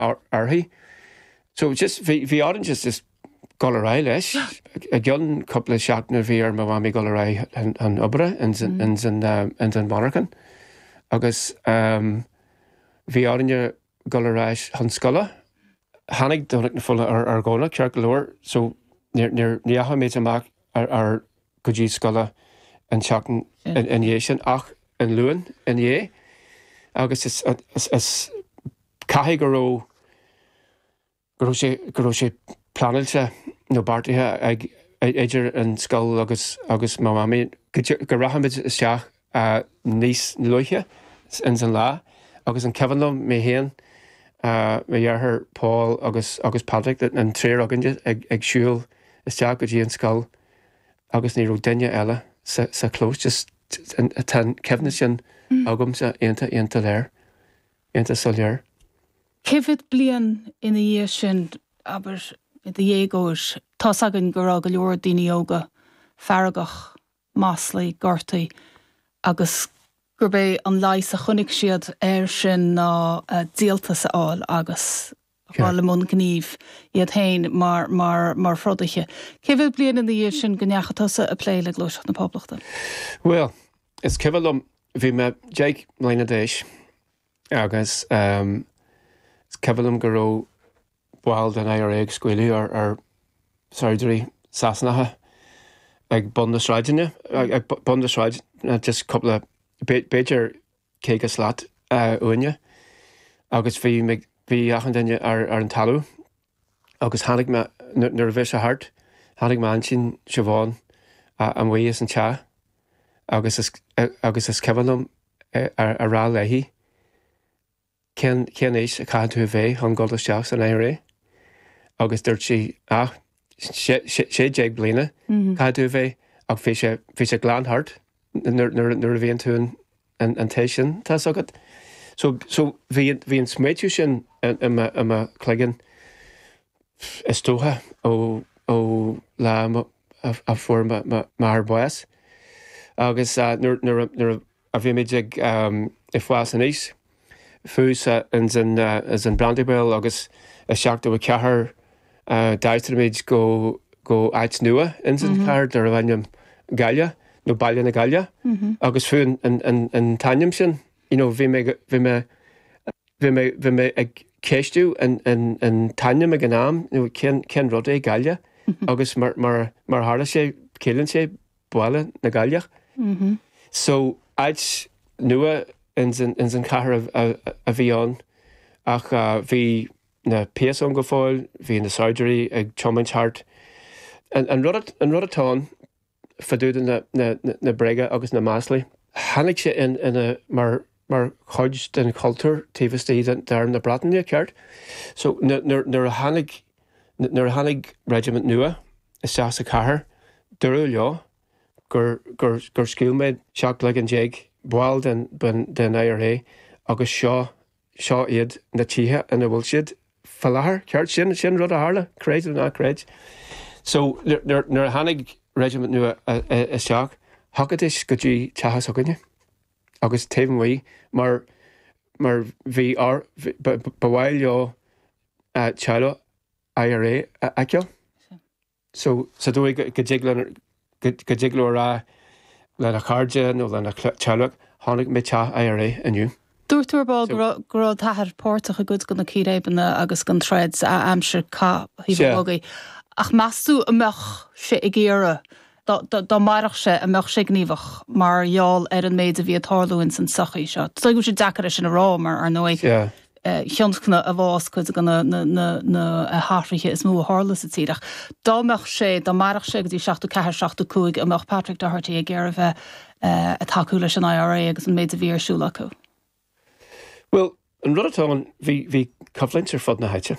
uirthi. So just, bhí, bhí orainn just, just dul ar aghaidh leis. I gcionn cúpla seachtaine bhí ar mo mhamaí dul ar aghaidh chun, chun obair ins an, ins an, um, ins an mhonarchan. Agus um, bhí orainne dul ar ais chun scoile. Tháinig Domhnach na Fola ar, ar Dhomhnach, ceart go leor, so níor, níor, ní dheachaigh muid amach ar, ar, go dtí scoile an tseachtain ina dhiaidh sin ach an Luan ina dhiaidh agus is caithfidh go raibh go raibh sé pleanáilte nó beartaithe ag idir an scoil agus mo Mhamaí go rachaimid isteach a níos luaithe ins an lá agus an cuimhin liom mé féin, mo dheartháir Paul agus Patrick, an triúr againn ag siúl isteach go dtí an scoil agus ní raibh duine eile sa chlós just tá an cuimhne sin agamsa iontach, iontach léir, iontach soiléir. Cé mhéad bliain ina dhiaidh sin, abair i do dhéagóir, tá's againn go raibh go leor daoine óga feargach maslaithe, gortaithe agus gurb é an leigheas a chonaic siad air sin ná díoltas a fháil agus a ghabháil i mbun gnímh iad féin mar throdaithe. Cé mhéad bliain ina dhiaidh sin go ndeachaigh tusa ag plé le Gluaiseacht na Poblachta? Bhuel, is cuimhin liom, bhí mé deich mbliana d'aois agus is cuimhin liom go raibh, baill den IRA ag scaoileadh ar shaighdiúirí Sasanacha ag bun na sráideanna, ag bun na sráideanna just cúpla, b'fhéidir caoga slat uainne agus bhí, bhí achan duine ar an talamh agus tháinig mé, nuair a bhí sé thart, tháinig m'aintín Siobhán amuigh as an teach agus, agus is cuimhin liom a rá léi, cén aois a chaithfidh tú a bheith chun dul isteach san IRA? Agus dúirt sí, ah, sé déag bliana caithfidh tú a bheith, ach bhí sé, bhí sé glan thart nuair a bhíonn tú an t-aois sin, tá's agat. So, so bhí, bhí an smaoitiú sin i mo chloigeann is dócha ó, ó lá a fuair m'athair bás. Agus nuair a, nuair a, nuair a. a bhí muid ag fás aníos, fiú ins an Brandywell agus i 74 d'aistrigh muid go áit nua ins an chathair darbh ainm Galliagh nó Baile na gCailleach agus fiú an t-ainm sin you know bhí mé bhí mé bhí mé bhí mé ag ceistiú an an an t-ainm ag an am nó cén cén rud é Galliagh agus mar mar mar a tharla sé ciallaíonn sé Baile na gCailleach. So, áit nua ins an chathair a bhí ann ach bhí na péas ann go fóill, bhí na saighdiúirí ag tiomáint thart. An rud atá ann, fá dtaobh de na bréaga agus na maslaí, tháinig sé ina, mar, mar chuid den chultúr taobh istigh d'arm na Breataine, ceart? So, nuair a tháinig, nuair a tháinig reisimint nua isteach sa chathair, dúradh leo gur, gur, gur scaoil muid trí chloigeann déag ball den, den, den IRA agus seo, seo iad na tithe ina bhfuil siad faoi láthair, ceart? Sin, sin rud a tharla, creid nó ná creid. So, nuair, nuair, nuair a tháinig reisimint nua isteach, thiocfaidís go dtí teach s'againne. agus taobh amuigh mar mar bhí ba mhaith leo teaghlach IRA a fheiceáil. So sa dóigh go dtig lena go dtig leo a rá lena chairde nó lena teaghlach chonaic mé teach IRA inniu. Dúirt tú ar ball go raibh go raibh d'athair páirteach i gcuid de na círéibeanna agus den troid a aimsir cath Thaobh an Bhogaigh ach meas tú an mbeadh sé ag iarraidh dá mairfeadh sé, an mbeadh sé gníomhach mar gheall ar an méid a bhí ag tarlú ins an tsochaí seo? Is dóigh go bhfuil sé deacair é sin a rá mar, ar ndóigh, thionscnaigh a bhás cuid de na hathruithe is mó a tharla sa tír. Ach dá mbeadh sé, dá mairfeadh sé go dtí seachtó ceathair, seachtó cúig, an mbeadh Patrick Doherty ag iarraidh bheith ag tacú leis an IRA agus an méid a bhí ar siúl acu? Bhuel, an rud atá ann, bhí, bhí coimhlint ar fud na háite.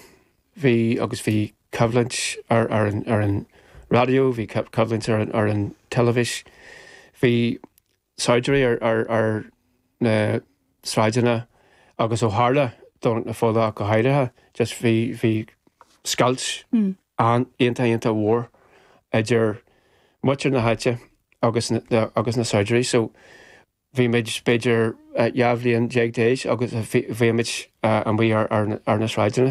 Bhí, agus bhí coimhlint ar, ar an, ar an raidió, bhí coimhlint ar an, ar an teilifís, bhí saighdiúirí ar, ar, ar na sráideanna agus ó tharla Domhnach na Fola go háirithe, just bhí, bhí scoilt an, iontach, iontach mór idir muintir na háite agus, agus na saighdiúirí. So, bhí muid b'fhéidir dhá bhliain déag d'aois agus bhí muid amuigh ar na sráideanna.